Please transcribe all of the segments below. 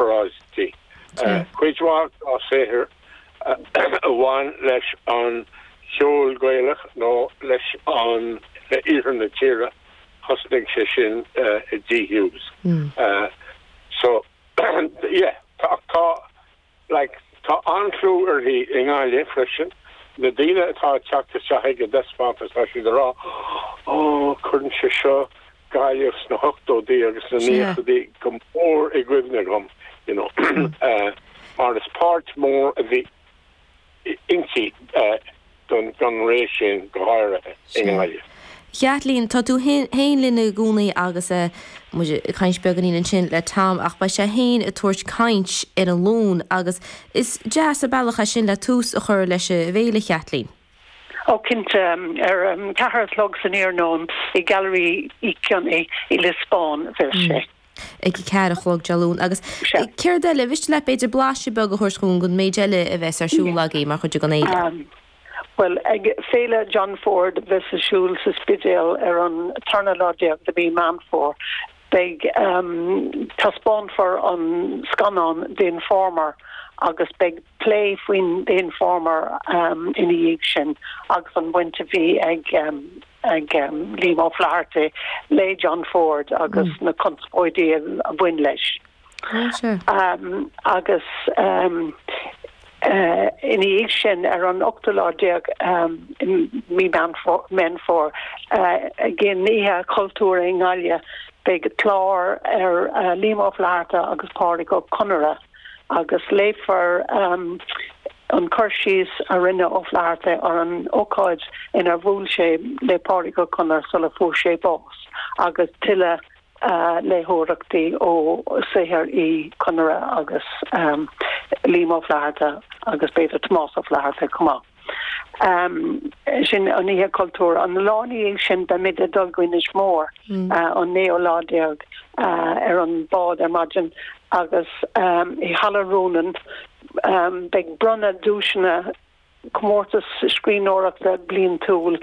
Oráistí. Cuid mhaith dá saothar a bhain leis an saol Gaelach nó leis an iarthar na tíre, thosnaigh sé sin i Dee Hughes. So, yeah, ach tá, like, tá an-chlú uirthi i nGaillimh freisin. Na daoine atá ag teacht isteach ag an dtaispeántas, tá siad ag rá, Ó, cuireann sé seo Gaillimh sna hochtóidí agus sna nóchaidí go mór i gcuimhne dhom you know mar is páirt mhór a bhí inti don ré sin, go háirithe i nGaillimh. Chaitlín, tá tú féin linn i gcónaí agus muid ag caint beagáinín ansin le Tom ach beidh sé féin ag tabhairt caint Dé Luain agus is deas an bealach é sin le tús a chur leis an bhféile, a Chaitlín. Ó cinnte, ar a ceathair a chlog san iarnóin i nGailearaí Uí Chionnaith i Lios Bán a bheas sé. Ag a ceathair a chlog Dé Luain. Agus céard eile? An mhiste leat, b'fhéidir, blaiseadh beag a thabhairt dhúinn den méid eile a bheas ar siúl agaibh mar chuid den fhéile? Bhuel, ag Féile John Ford a bheas ar siúl sa Spidéal ar an tarna lá déag de mhí Mheán Fómhair, Beidh taispeánfar an scannán The Informer agus beidh plé faoin The Informer ina dhiaidh sin agus an bhaint a bhí ag ag Liam O'Flaherty le John Ford agus na conspóidí a bhain leis. agus ina dhiaidh sin, ar an ochtú lá déag de mhí Mheán Fómhair, ag an Oíche Chultúir i nGaillimh, beidh clár ar Liam Ó Flaithearta agus Pádraic Ó Conaire agus léifear an cur síos a rinne Ó Flaithearta ar an ócáid inar bhuail sé le Pádraic Ó Conaire sula fuair sé bás, agus tuilleadh. léitheoireachtaí ó saothar Uí Chonaire agus Liam Ó Flaithearta agus b'fhéidir Tomás Ó Flaithearta chomh maith. Sin an Oíche Chultúir. An lá ina dhiaidh sin beimid ag dul go Inis Mór, an naoú lá déag, ar an bhád ar maidin agus i Halla Rónáin beidh bronnadh duaiseanna, comórtas scríbhneoireachta bliantúil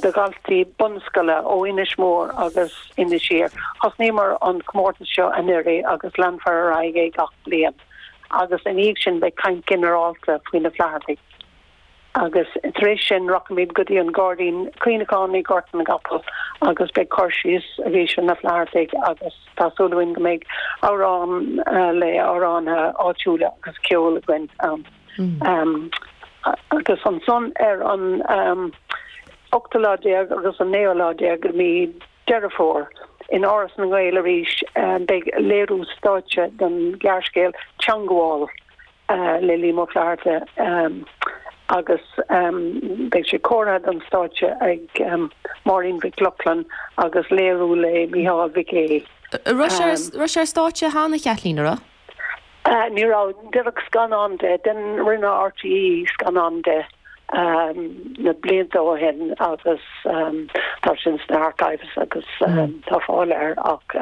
do dhaltaí bunscoile ó Inis Mór agus Inis Oírr. Thosnaíomar an comórtas seo anuraidh agus leanfar ar aghaidh leis gach bliain. Agus ina dhiaidh sin beidh caint ghinearálta faoi na Flaitheartaigh. Agus tar éis sin rachaimid go dtí an Gairdín Cuimhneacháin i nGort na gCapall agus beidh cur síos arís ar na Flaitheartaigh agus tá súil againn go mbeidh amhrán le amhránaithe áitiúla agus ceol againn ann. agus ansan ar an 18 lá agus an 19 lá de mhí Deireadh Fómhair, in Áras na nGael arís, beidh léiriú stáitse den ghearrscéal 'Teangabháil' le Liam Ó Flaithearta agus beidh sé cóirithe don stáitse ag Máirín Mhic Lochlainn agus léiriú le Micheál Mhic Éil. An raibh sé ar stáitse cheana, a Chaitlín, an raibh? Ní raibh, déanadh scannán de, rinne RTÉ scannán de na blianta ó shin agus tá sin sna archives agus tá fáil air ach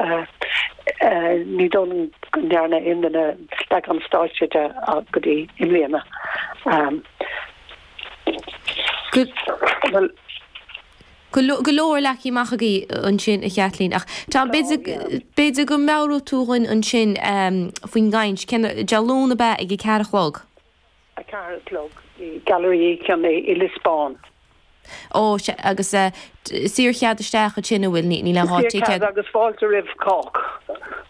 ní dóigh liom go ndearna aon duine leagan stáitse de go dtí i mbliana. Bhuel. Go leor, leagtha amach agaibh ansin, a Chaitlín. Ach tá, b'fhéidir go meabhróidh tú dhuinn ansin faoin gcaint, cén, Dé Luain ab ea ag a ceathair a chlog? A ceathair a chlog i Gailearaí Uí Chionnaith i Lios Bán. Ó, sea. Agus saor chead isteach ansin, an bhfuil? Níl aon ticéad. Saor cead agus fáilte roimh chách.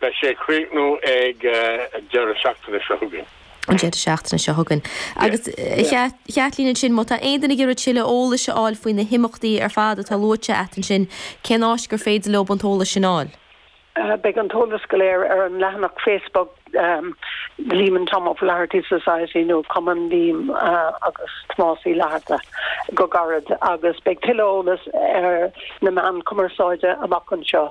Beidh sé ag críochnú ag an deireadh seachtaine seo chugainn. an deireadh seachtaine seo chugainn. Agus, a Chaitlín, ansin, má tá aon duine ag iarraidh tuilleadh eolais a fháil faoi na himeachtaí ar fad atá luaite agat ansin, cén áit gur féidir leo an t-eolas sin a fháil? Beidh an t-eolas go léir ar an leathanach Facebook Liam and Tom O'Flaherty Society nó Cumann Liam agus Tomás Uí Fhlatharta go gairid agus beidh tuilleadh eolais ar na meáin chumarsáide amach anseo.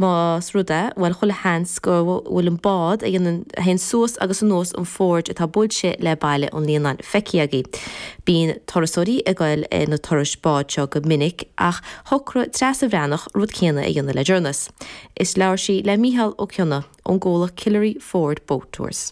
Más ea, bhuel, chuile sheans go bhfuil an bád a dhéanann, a théann suas agus anuas an fiord atá buailte le Baile an Líonáin feicthe agaibh. Bíonn turasóirí ag goil ar na turais báid seo go minic ach shocraigh Treasa Bhreathnach rud céanna a dhéanamh le deireanas is labhair sí le Mícheál Ó Cionnaith ón gcomhlacht Killary Fjord Boat Tours.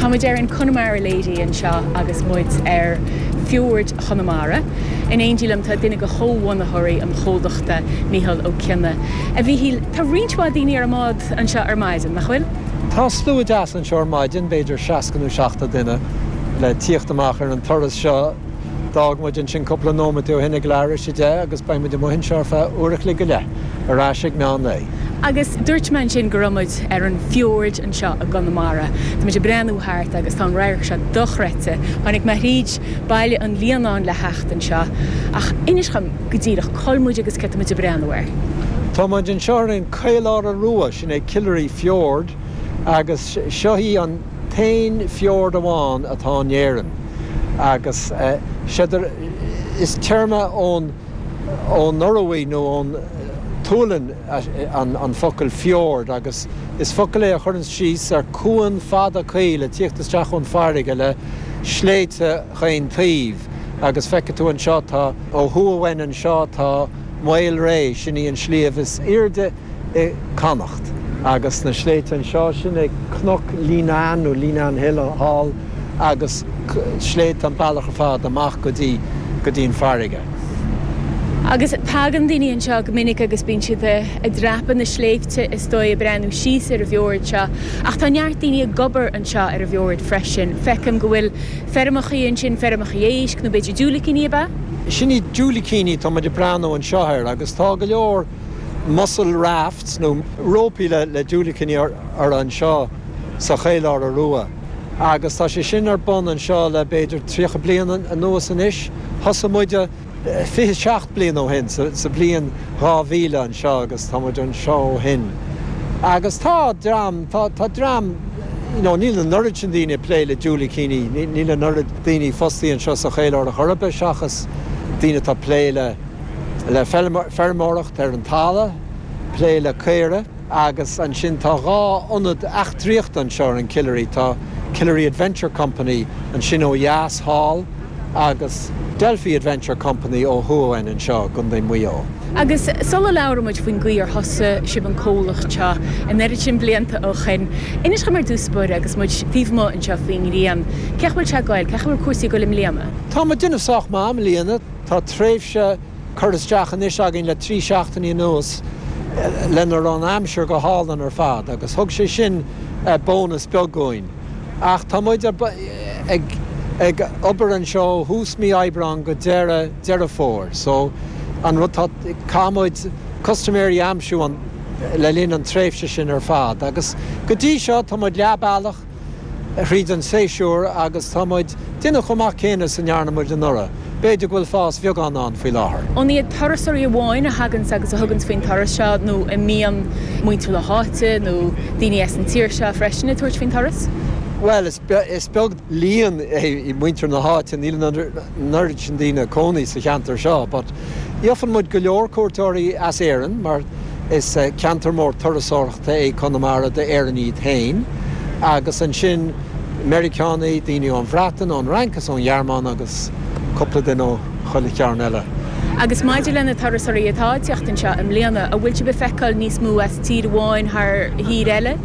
Tá muid ar an Connemara Lady anseo agus muid ar Fiord Chonamara. In éindí liom tá duine de chomhbhunaitheoirí an chomhlachta, Micheál Ó Cionnaith. A Mhíchíl, tá roinnt mhaith daoine ar an mbád anseo ar maidin, nach bhfuil? Tá slua deas anseo ar maidin, b'fhéidir 60 nó 70 duine. le tíocht amach ar an turas seo. D'fhág muid ansin cúpla nóimeataí ó shin ag leathuair théis a deich agus beidh muid amuigh anseo ar feadh uair a chloig go leith, ar ais ag meán lae. Agus dúirt mé ansin go raibh muid ar an fiord anseo i gConamara. Tá muid ag breathnú thart agus tá an radharc seo dochreidte. Tháinig mé thríd Baile an Líonáin le theacht anseo, ach inis dhom go díreach cá'il muid agus cé tá muid ag breathnú air? Tá muid anseo ar an Caoláire Rua, sin é Killary Fiord, agus seo í an. t-aon fiord amháin atá in Éirinn, agus sé dir is téarma ón Noruaidh nó ón tSualainn an focal fjord, agus is focal é a chuireanns síos ar chuan fada caol ag tíocht isteach ón bhfarraige le sléibhte chaon taoibh, agus feicfidh tú anseo tá. Ó thuaidh uainn anseo tá Maol Réidh, sin é an sliabh is aoirde i Connacht. Agus na sléibhte anseo sin ag Cnoc an Líonáin nó Leenane Hill thall agus sléibhte an bealach ar fad amach go dtí, go dtí an farraige. Agus tagann daoine anseo go minic agus bíonn siad ag dreapadh na sléibhte is dóigh ag breathnú síos ar an bhfeord seo. Ach tá neart daoine ag obair anseo ar an bhfeord freisin. Feicim go bhfuil feirmeacha ansin, feirmeacha éisc nó b'fhéidir diúilicíní ab ea? Sin iad diúilicíní, tá muid ag breathnú anseo air agus tá go leor. mussel rafts nó rópaí le diúilicíní orthu anseo sa Chaoláire Rua agus tá sé sin ar bun anseo le b'fhéidir tríocha bliain anuas anois. Thosaigh muid fiche seacht mbliana ó shin, sa bhliain dhá mhíle anseo agus tá muid anseo ó shin. Agus tá dream, tá dream, you know, níl an oiread sin daoine ag plé le diúilicíní, níl an oiread daoine fostaithe anseo sa Chaoláire chor ar bith seachas daoine atá ag plé le, le feirmeoireacht ar an talamh, plé le caoirigh agus ansin tá dhá ionad eachtraíochta anseo ar an Killary, tá Killary Adventure Company ansin ó dheas thall agus Delphi Adventure Company ó thuaidh anseo i gContae Mhuigh Eo. Agus sula labhrann muid faoin gcaoi ar thosaigh sibh an comhlacht seo an oiread sin blianta ó shin, inis dom ar dtús, fiú, agus muid taobh amuigh anseo faoin ngrian, cén chaoi a bhfuil sé ag goil, cén chaoi a bhfuil cúrsaí ag goil i mbliana? Tá muid déanamh sách maith i mbliana. Tá tréimhse curtha isteach anois againn le trí seachtainí anuas lena raibh an aimsir go hálainn ar fad agus thug sé sin bónas beag dhúinn. Ach tá muid ag obair anseo ó thús mí Aibreáin go deireadh Deireadh Fómhair so an rud atá, caithfidh muid custaiméirí a aimsiú le linn an tréimhse sin ar fad agus go dtí seo tá muid leath bealach. thríd an séasúr agus tá muid déanamh chomh maith céanna is a ndearna muid anuraidh. B'fhéidir go bhfuil fás beag ann faoi láthair. An iad turasóirí amháin a thaganns agus a thuganns faoin turas seo nó an mbíonn muintir na háite nó daoine as an tír seo freisin ag tabhairt faoin turas? Bhuel, is beag líon é muintir na háite, níl an oiread sin daoine ina gcónaí sa cheantar seo but gheofann muid go leor cuairteoirí as Éirinn mar, Is ceantar mór turasóireachta é Conamara d'Éireannaigh iad féin, agus ansin Meiriceánaigh, daoine ón Bhreatain, ón Fhrainc is ón Ghearmáin agus cúpla duine ó chuile chearn eile. Agus maidir le na turasóirí atá ag teacht anseo i mbliana, an bhfuil sibh ag feiceáil níos mó as tír amháin thar thír eile?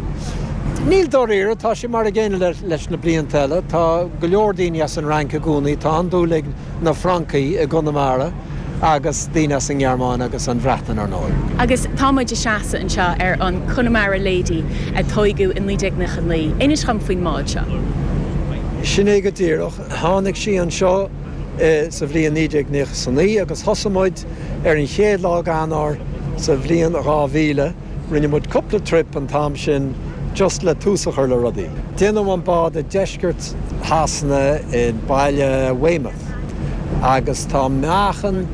Níl dáiríre, tá sé mar a gcéanna leis na blianta eile. Tá go leor daoine as an Fhrainc i gcónaí, tá an-dúil ag na Francaigh i gConamara. agus daoine as an nGearmáin agus an Bhreatain, ar ndóigh. Agus tá muid ag seasamh anseo ar an Connemara Lady a tóigeadh i 1999. Inis dhom faoin mbád seo. Sin é go díreach. Tháinig sí anseo sa bhliain 1999 agus thosaigh muid ar an chéad lá d'Eanáir sa bhliain 2000. Rinne muid cúpla trip an t-am sin just le tús a chur le rudaí. Déanadh an bád i deisceart Shasana i baile Weymouth. agus tá meáchan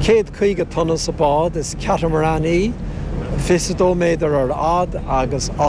céad caoga tonna sa bhád. Is catamaran í, 22 méadar ar fhad agus 18.